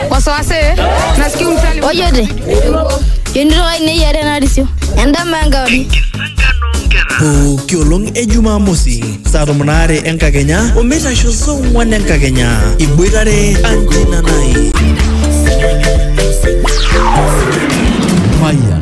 wasiwasi nasikia umsali Ojote. Yonito kai nei are narisio. Endama enkauri. pooki olong e jumamosi saa tomon aare enkakenya omeitasho saa ong'wan enkakenya iboitare anjinanai Mayan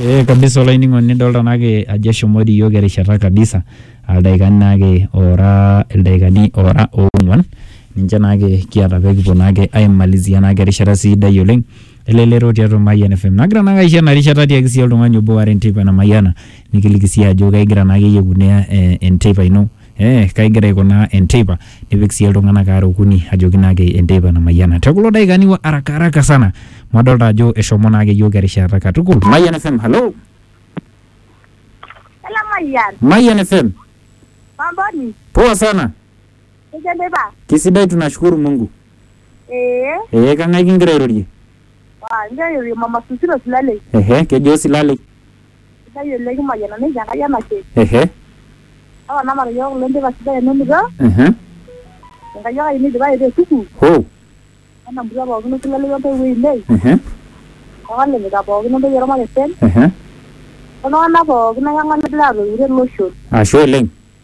Ee kabisa olainining'oni idolta naake ajo eshomoita iyiok erishata kabisa aa ildaikani naake oora ildaikani oora oong'uan ninche naake kiata pee kipuo naake aimalizia naake erishata sidai oleng' elelero tiatua Mayian FM. Nagira naake aisho ena rishata atiaki sii oltung'ani obo aare enteipa namayiana nikiliki sii ajo kegira naake iyie aikunaa enteipa ino. eh, kaigira aikunaa enteipa nipik sii iltung'anak aare okuni ajoki naake enteipa namayiana te kulo daikani wa araka araka sana amu adolta ajo eshomo naake yiok erishata katukul Mayian FM hello Hello, Mayian. Mayian FM Mamboni, poa sana nikidipa. kisidai tunashukuru Mungu Ee, ee kang'ae kingira airorie wa ndio yule mama Susilo Silale. ehe kejo silalei Sidai oleng kimayiana ninche Enkai enashe. Ehe. Papa namat iyiook kulo indipa sidai enonito. Ehe. Enkai ake ayieu nidipayu te sukuul. Hoo. Wenamurua pookin olkila ororei ontoiwuo ainei. Ehe. Olalejita pookin ontoyie ormakesen. Ehe. Oltung'anak pookin akeyie ng'ole laatoiutuo tele osho. Ashe oleng.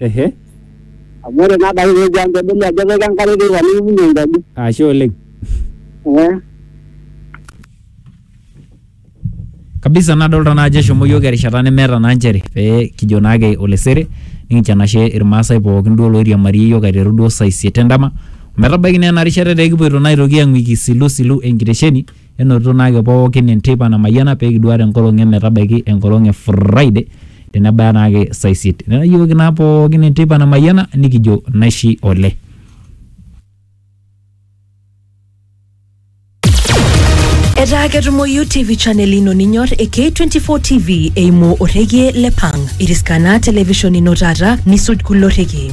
Ehe. amu ore naa adake peejo ang pedoli ajo epika enkare teipa nikipunyie enkaji Ashe oleng. eh kabisa nadolta naa ajo eshomo yiok erishata nemeeta naa nchere pee kijo naake olesere nikincho enashe irmaasai pookin duo loiriamariyie yiok aiteru duo saa isiet endama ometabaiki naa ena rishata etaa ekipuoito naa aitoki ang'uiki isilisilu enkitesheni Enotito naa ake pookin enteipa namayiana pee kiduaare enkolong e metabaiki enkolong e Friday tenebaya naa ake saa isiet. Netayooki naa pookin enteipa namayiana nikijo naishi ole. Etaa ketumoyu TV channel ino ninyor e K24 TV eimu orrekie le Pang. Iriska naa television ino taata nisuj kulo rrekie.